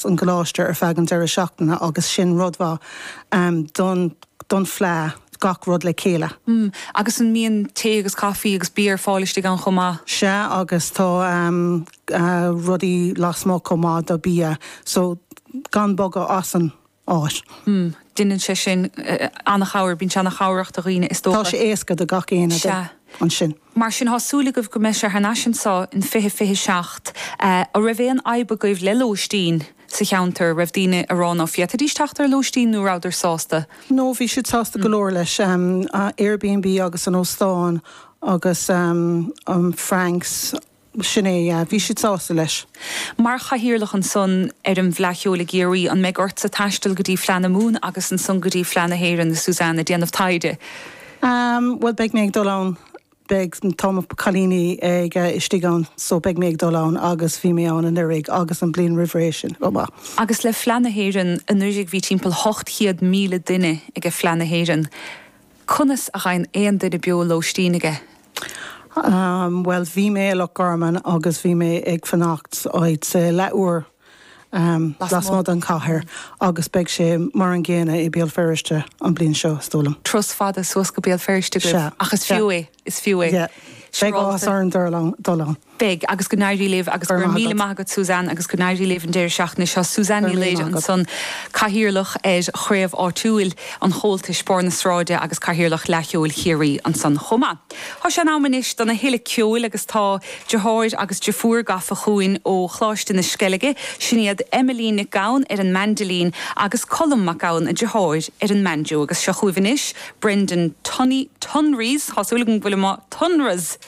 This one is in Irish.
an gcoláiste ar feadh an deireadh seachtaine agus sin rud mhaith don fleadh, gach rud le chéile. Agus an mbíonn tae agus caifí agus bia ar fáil istigh ann chomh maith? Sea agus tá rudaí lasmuigh chomh maith do bia so gan bogadh as an áit. Deineann sé sin an-chabhair, bíonn sé an-chabhrach do dhaoine is dócha. Tá sé éasca do gach éinne ansin. Mar sin tá súil agaibh go mbeidh sé thar n-ais anso in 2027. An raibh aon fhadhb agaibh le lóistín sa cheantar? An raibh daoine á rá ná féadfaidís teacht ar lóistín nó rabhadar sásta? No, bhí siad sásta go leor leis. Airbnb agus an óstán agus Frank's. Sin é, yeah. Bhí siad sásta leis. Mar chathaoirleach ansan ar an bhFleadh Cheoil i gCiarraí, an mbeidh ortsa taisteal go dtí Fleadh na Mumhan agus ansan go dtí Fleadh na hÉireann, a Suzanne, ag déanamh taighde? Bhuel, beidh mé ag dul ann. Beidh, tá mo cailíní ag, istigh ann so beidh mé ag dul ann agus bhí mé ann anuiridh agus an bliain roimh ré sin chomh maith. Agus le Fleadh na hÉireann, anuiridh bhí timpeall 800,000 duine ag an Fleadh na hÉireann. Conas a fhaigheann aon duine beo lóistín aige? Bhuel, bhí mé i Loch Garman agus bhí mé ag fanacht áit leathuair lasmuigh den chathair agus beidh sé mar an gcéanna i Béal Feirste an bhliain seo, is dóigh liom. Turas fada suas go Béal Feirste agaibh ach is fiú é, is fiú é. Beidh áthas orainn dul ann. Beidh, agus go n-éirí libh agus go raibh míle maith agat Suzanne agus go n-éirí libh an deireadh seachtaine seo. Suzanne Ní Laoire ansan, Cathaoirleach ar chraobh áitiúil an Chomhaltais, Barr na Sráide agus Cathaoirleach Fhleadh Cheoil Chiarraí ansan chomh maith. Tá sé in am anois dona thuilleadh ceoil agus tá deartháir agus deirfiúr gafa chugainn ó Choláiste na Sceilge, sin iad Emilene Nic Gabhann ar an maindilín agus Colm Mac Gabhann, a deartháir, ar an mbanjo agus seo chugaibh anois Brendan Tunney, Tonry's, tá súil agam go bhfuilim á, Tonra's!